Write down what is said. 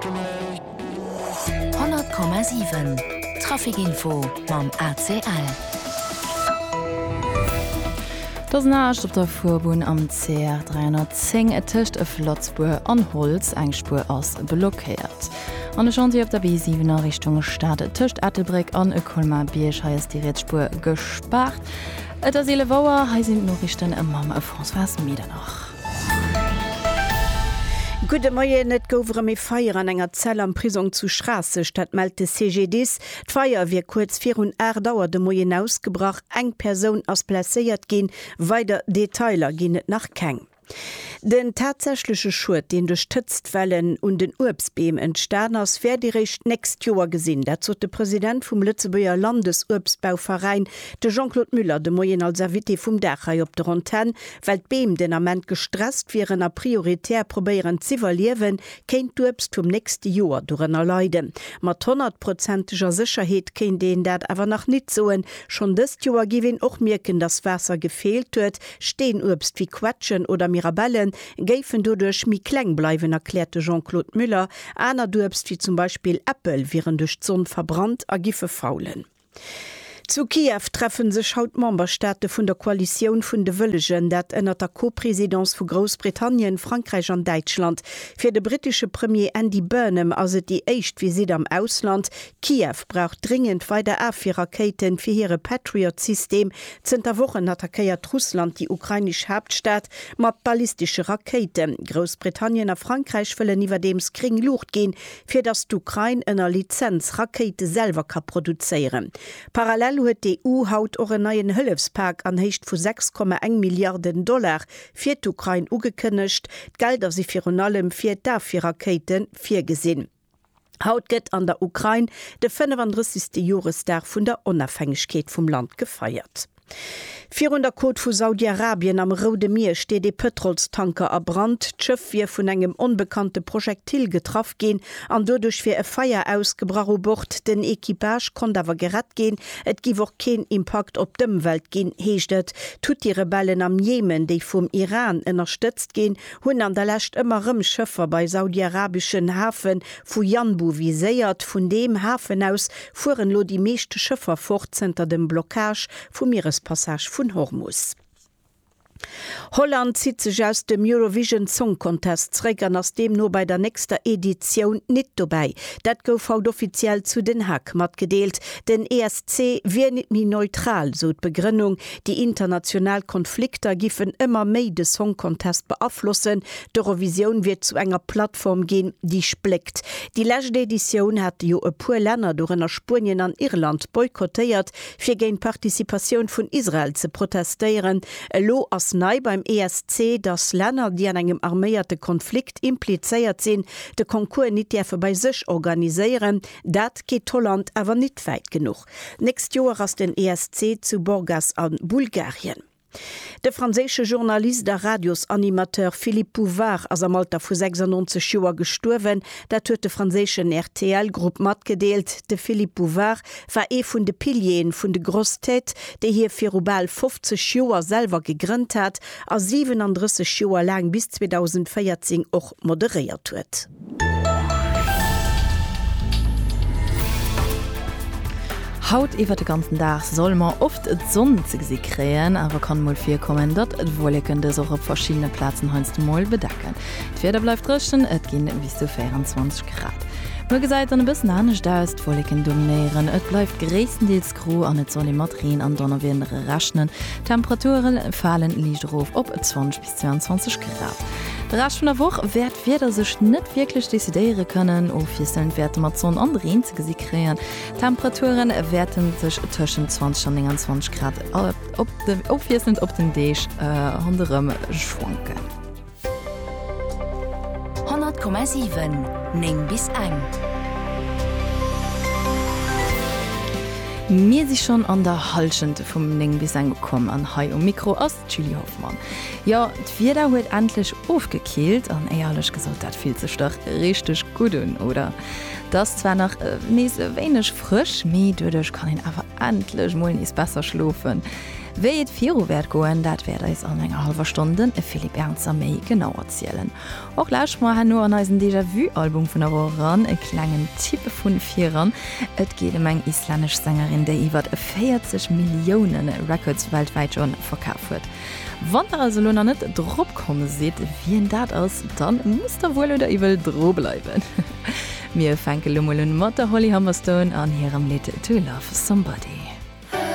100,7 Trafic Info mam ACL. Et ass naascht op der Fuerbunn am CR 310 tëscht Eflozbuer an Holtz. Eng Spuer ass blockéiert. An de Chantier op der B7 a Richtung Stad tëscht Ettelbréck an Colmar-Bierg. Hei ass déi riets Spuer gespaart. Et ass 11 Auer. Hei sinn d'Noriichten mam Françoise Medernach. Gudde Moien, Et gouf erëm ee Feier an enger Zell am Prisong zu Schraasseg, dat mellt de CGDIS. D'Feier wier kuerz virun 8 Auer de Moien ausgebrach. Eng Persoun ass blesséiert ginn, weider Detailer ginn et nach keng. Den tatsächleche Schued, deen duerch d'Hëtztwellen un den Uebstbeem entstan ass, wäert ee réischt d'nächst Joer gesinn. Dat sot de President vum Lëtzebuerger Landesuebstbauveräin, de Jean-Claude Muller, de Moien als Invité vum Dag hei op der Antenn. Well d'Beem den Ament gestresst wieren a prioritär probéieren z'iwwerliewen, kéint d'Uebst vum nächste Joer dorënner leiden. Mat honnertprozenteger Sécherheet kéint een dat awer nach nit soen. Schonn dëst Joer géif een och mierken, dass Waasser gefeelt huet. Steenuebst wéi Quetschen oder Mirabellen géifen doduerch méi kleng bleiwen, erkläert de Jean-Claude Muller. Anert Uebst, wéi zum Beispill Äppel, wieren duerch d'Sonn verbrannt a giffe faulen. Zu Kiew treffe sech haut d'Memberstaate vun der Koalitioun vun de Wëllegen, dat ënnert der Co-Presidence vu Groussbritannien, Frankräich an Däitschland. Fir de brittesche Premier Andy Burnham ass et déi éischt Visitt am Ausland. Kiew brauch dringend weider Afwierrakéiten fir hire Patriot-System. Zënter Wochen attackéiert Russland déi ukrainesch Haaptstad mat ballistesche Rakéiten. Groussbritannien a Frankräich wëllen iwwerdeems gréng Luucht ginn, fir datt d'Ukrain ënner Lizenz Rakéite selwer ka produzéieren. Parallel huet d'EU haut och en neien Hëllefspak an Héicht vu 6,1 Milliarden Dollar fir d'Ukrain ugekënnegt. D'Gelder si virun allem fir d'Afwierrakéite virgesinn. Haut gëtt an der Ukrain de 35. Joresdag vun der Onafhängegkeet vum Land gefeiert. Virun der Côte vu Saudi-Arabien am Roude Mier steet ee Pëtrolstanker a Brand. D'Schëff wier vun engem onbekannte Projektil getraff ginn an doduerch wier e Feier ausgebrach u Bord. Den Equipage konnt awer gerett ginn. Et giff och keen Impakt op d'Ëmwelt ginn, heescht et. D'Huthi-Rebellen am Jemen, déi vum Iran ënnerstëtzt ginn, hunn an der Lescht ëmmer erëm Schëffer bei saudi-arabeschen Hafe Vu Yanbu viséiert, vun deem Hafen aus fueren elo déi meescht Schëffer fort zënter dem Blockage vum Mierespassage vun Hormus. Holland zitt sech aus dem Eurovision Song Contest zréck an ass deemno bei der nächster Editioun nit dobäi. Dat gouf haut offiziell zu Den Haag matgedeelt. Den ESC wier nit méi neutral, sou d'Begrënnung. Déi international Konflikter giffen ëmmer méi de Song Contest beaflossen, D'Eurovisioun wier zu enger Plattform ginn, déi spléckt. Déi lescht Editioun hate jo e puer Länner, dorënner Spuenien an Irland, boykottéiert, fir géint d'Participatioun vun Israel ze protestéieren. Elo ass nei beim ESC, datt Länner, déi an engem arméierte Konflikt implizéiert sinn, de Concours nit däerfe bei sech organiséieren. Dat geet Holland awer nit wäit genuch. D'nächst Joer ass den ESC zu Burgas a Bulgarien. De franséische Journalist a Radiosanimateur Philippe Bouvard ass am Alter vu 96 Joer gestuerwen. Dat huet de franséischen RTL-Grupp matgedeelt. De Philippe Bouvard war ee vun de Pilieren vun de Grosses Têtes, déi hie viru bal 50 Joer selwer gegrënnt hat a 37 Joer laang bis 2014 och moderéiert huet. Haut iwwert de ganzen Dag solle mer oft d'Sonn ze gesi kréien, awer kann mol virkommen, datt d'Wueleken dës och op verschiddene Plazen heiansdo mol bedecken. D'Wieder bleift dréchen, et ginn bis zu 24 Grad. Muer gesäit et dann e bëssen anescht aus, d'Wueleken dominéieren, et bleift gréisstendeels gro an et soll ee mat Reen an Donnerwieder rechnen. D'Temperature fale liicht erof op 20 bis 22 Grad. De Rescht vun der Woch wäert d'Wieder sech net wierklech decidéiere kënnen. Ofwiesselnd wäerte mer d'Sonn an Reen ze gesi kréien. D'Temperature wäerte sech tëschent 20 an 29 Grad ofwiesselnd op den Deeg ronderëm schwanken. 100,7, 9 bis eng. Mir si schonn an der Hallschent vum 9 bis eng ukomm an hei um Mikro ass. D'Julie Hoffmann, Jo, d'Wieder huet endlech ofgekillt an éierlech gesot, dat fillt sech dach richteg gutt un, oder? Et ass zwar nach nees e wéineg frësch, mee doduerch kann een awer endlech mol nees besser schlofen. Wéi et viru wäert goen, dat wäert eis an enger hallwer Stonn de Philippe Ernzer méi genau erzielen. Och lauschtert mer herno an eisen Déjà-Vu-Album vun der Woch eran, e klengen Tipp vu viran. Et geet ëm eng islännesch Sängerin, déi iwwert 40 Millioune Records weltwäit schonn verkaf huet. Wann der also elo nach net drop komm sidd, wien dat ass, da musst der wuel oder iwwel dru bleiwen. Mir fänke lo mol un mat der Holly Humberstone an hirem Lidd To Love Somebody.